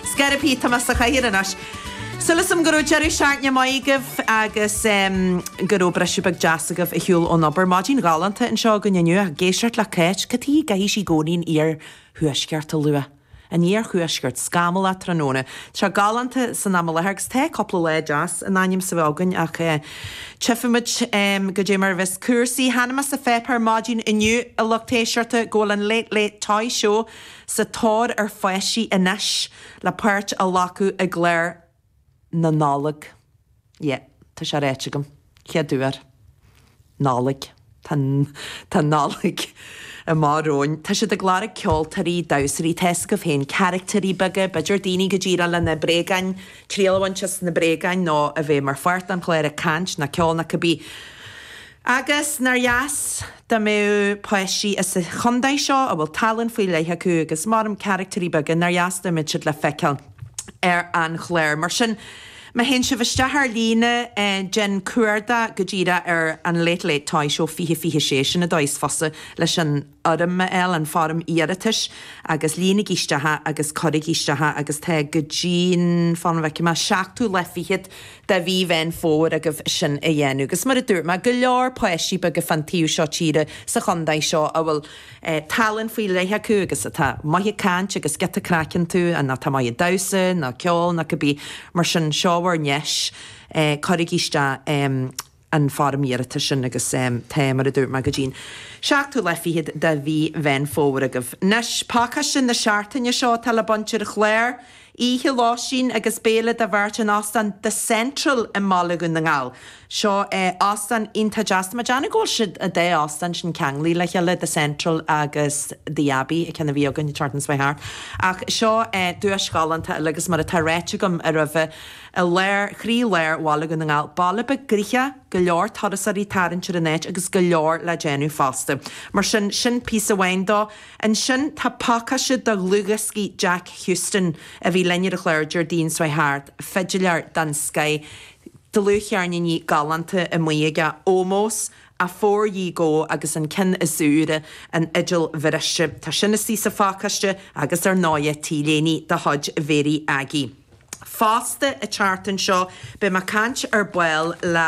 Scaraibí, Tomás sa chathaoir anois. Súil agam go raibh deireadh seachtaine maith agaibh agus go raibh briseadh beag deas agaibh ar shiúl ón obair. Maidin ghalánta anseo againn inniu ag éisteacht le Cáit. Cad tuige a gcaithfidh sí i gcónaí an iarthuaisceart a lua? An iarthuaisceart, scamallach tráthnóna. Tá sé galánta san am i láthair agus tá cúpla lá deas in ainm is a bheith againn ach tchifimid goidé mar a bheas cúrsaí. Chonaic mé sa pháipéar maidin inniu a lucht éisteachta go bhfuil an Late Late Toy Show, sa tóir ar pháistí anois le páirt a ghlacadh i gclár na Nollag. Yeah, tá sé ráite agam. Chéad uair. Nollaig. Tá, tá Nollaig i m'aird romhainn. Tá siad ag lorg ceoltóirí, damhsóirí, tá fhios agaibh féin, caraictéirí beaga, b'fhéidir daoine go díreach leis na bréagáin, triail a bhaint as na bréagáin nó a bheith mar pháirt den chlár ag caint, nó ceol, nó cibé. Agus nár dheas dá mbeadh páistí sa chontae seo a bhfuil tallann faoi leith acu agus, mar a deirim caraictéirí beaga, nár dheas dá mbeadh siad le feiceáil ar an chlár. Mar sin, má théann sibh isteach ar líne, déan cuardach go díreach ar an Late Late Toy Show 2026, sin an dóigh is fusa leis an. fhoirm a fháil an foirm iarratais agus líonaigí isteach é agus cuirigí isteach é agus tá go dtí an fan go bhfeice mé, seachtú lá fichead de mhí Mheán Fómhair agaibh sin a dhéanamh. Agus mar a dúirt mé, go leor páistí beaga fán taobh seo tíre sa chontae seo a bhfuil tallann faoi leith acu agus atá maith ag caint agus giota craic iontu nó atá maith ag damhsa nó ceol nó cibé mar sin seo bhur ndeis cuirigí isteach. an foirm iarratais sin agus tá, mar a dúirt mé, go dtí an seachtú lá fichead de mhí Mheán Fómhair agaibh. Anois, pacáiste na Seachtaine seo atá le baint ar an chlár oíche lóistín agus béile do bheirt in Ostán The Central i mBaile Dhún na nGall. Seo é ostán iontach deas, tá a fhios agam go bhfuil siad, an dá ostán sin ceanglaithe le chéile, The Central agus The Abbey, ceann a bhí againn an tseachtain s'chuaigh thart. Ach seo é duais ghalánta eile agus mar atá ráite agam aroimhe, I gcroílár Bhaile Dhún na nGall, baile beag gnoitheach, go leor turasóirí ag tarraingt ar an áit agus go leor le déanamh fosta. Mar sin, sin píosa amháin de. Ansin tá pacáiste de dhlúthdhioscaí Jack Houston a bhí linn ar an chlár Déardaoin s'chuaigh thart, fidiléir den scoth, dlúthcheirníní galánta amuigh aige, Ómós, Afore Ye Go agus an ceann is úire, An Fhidil Bhriste. Tá sin istigh sa phacáiste agus ar ndóighe, T-léiní de chuid Mháire Aggie. Fosta, an tseachtain seo, beidh mé ag caint ar ball le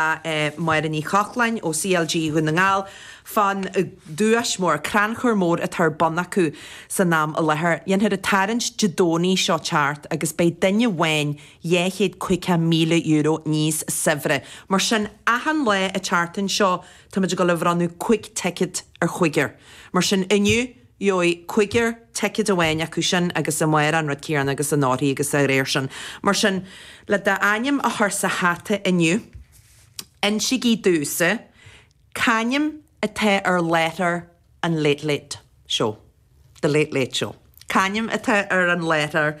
Máire Ní Chochláin ó CLG Dhún na nGall fán duais mór, crannchur mór atá ar bun acu san am i láthair. Dhéanfar an tarraingt Dé Domhnaigh seo ag teacht agus beidh duine amháin dhá chéad caoga míle euro níos saibhre. Mar sin, achan lá an tseachtain seo, táimid ag dul a bhronnadh cúig ticket ar chuigear. Mar sin, inniu, Gheobhaidh cúigear ticéad amháin acu sin agus amárach an rud céarna agus anóirthear agus dá réir sin. Mar sin, le d'ainm a chur sa hata inniu, insigí domhsa c'ainm atá ar láithreoir an Late Late Show. The Late Late Show. C'ainm atá ar an láithreoir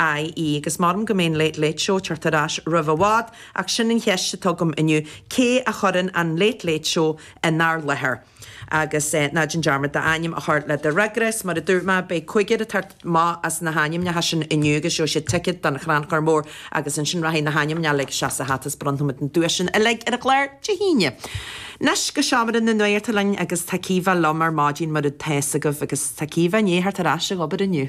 ii, Agus m'anam go mbeidh an Late Late Show ag teacht ar ais roimh i bhfad, ach sin an cheist atá agam inniu, cé a chuireann an Late Late Show inár láthair? Agus ná déan dearmad d'ainm a chur le do fhreagra, is mar a dúirt mé, beidh cúigear ag teacht amach as na hainmneacha sin inniu agus gheobhaidh siad ticéad don Chrannchur Mór agus ansin rachaidh na hainmneacha uilig isteach sa hata is bronnfaimid na duaiseanna uilig ar an gclár Dé hAoine. Anois go Seomra na Nuachta linn agus tá Caoimhe liom ar maidin mar atá fhios agaibh agus tá Caoimhe, i ndiaidh theacht ar ais ag obair inniu.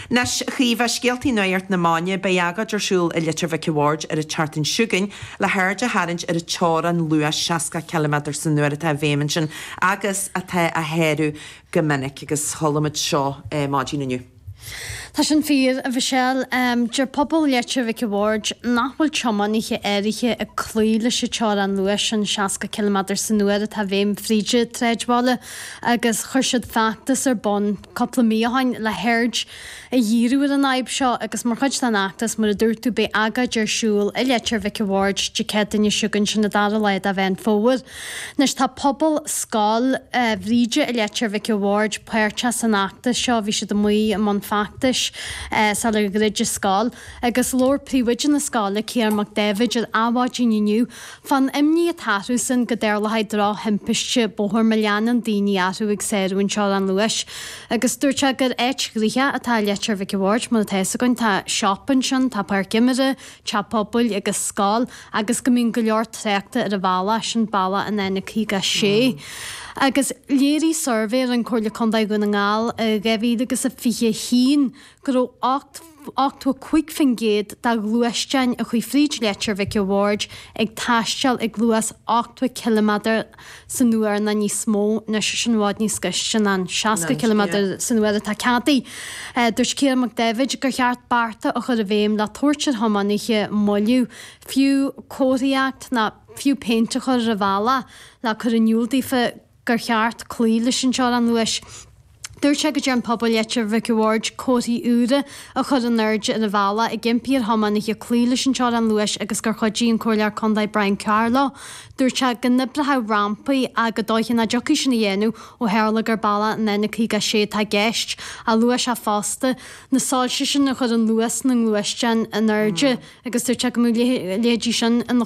Anois, Caoimhe, scéaltaí nuacht na maidine, beidh agóid ar siúl i Leitir Mhic a' Bhaird ar an tseachtain seo chugainn le haird a tharraingt ar an teorainn luais 60 ciliméadar san uair atá i bhfeidhm ansin agus atá á shárú go minic agus chuala muid seo maidin inniu. Tá sin fíor, a Mhichelle. Deir pobal Leitir Mhic a' Bhaird nach bhfuil tiománaithe áirithe ag cloí leis an teorainn luais sin 60 ciliméadar san uair atá i bhfeidhm fríd a' tsráidbhaile agus chuir siad feachtas ar bun cupla mí ó shoin, le haird a dhíriú ar an fhadhb seo, agus mar chuid den fheachtas, mar a dúirt tú, beidh agóid ar siúl i Leitir Mhic a' Bhaird, Dé Céadaoine seo chugainn, sin an dara lá de Mheán Fómhair. Anois, tá pobal Scoil Bhríde i Leitir Mhic a' Bhaird páirteach san fheachtas seo, bhí siad amuigh i mbun feachtais sular dhruid an scoil, agus labhair príomhoide na scoile, Ciarán Mac Daibhéid, ar Adhmhaidin inniu, Fán imní atá orthusan go dtarlóidh drochthimpiste bóthair má leanann daoine orthu ag sárú an teorainn luais. Agus dúirt sé gur áit ghnoitheach atá i Leitir Mhic a' Bhaird, mar atá fhios againn. Tá siopa ansin, tá páirc imeartha, teach pobail agus scoil agus go mbíonn go leor tráchta ar an bhealach, sin bealach an N56. Agus léirigh suirbhé a rinne Comhairle Contae Dhún na nGall i 2021 go raibh 85% de ghluaisteáin a chuaigh fríd Leitir Mhic a' Bhaird ag taisteal ag luas 80 ciliméadar san uair nó níos mó, anois sin i bhfad níos gaiste ná an 60 ciliméadar san uair atá ceadaithe. Dúirt Ciarán Mac Daibhéid gur cheart bearta a chur i bhfeidhm le tabhairt ar thiománaithe moilliú, fiú comharthaíocht nó fiú péint a chur ar an bhealach le cur in iúl daofa go gur cheart cloí leis an teorainn luais. Dúirt sé go dtearn pobal Leitir Mhic a' Bhaird comharthaí úra a chur in airde ar an bhealach ag impí ar thiománaithe cloí leis an teorainn luais agus gur chuidigh an Comhairleoir Contae Brian Carr leo. Dúirt sé go n-oibreodh rampaí ach gur dóiche nach dtiocfadh sin a dhéanamh ó tharla gur bealach an N56 atá i gceist ach luaigh sé fosta na soilse sin a chuireann luas na ngluaisteáin in airde agus dúirt sé go mbeadh a leithéid sin ina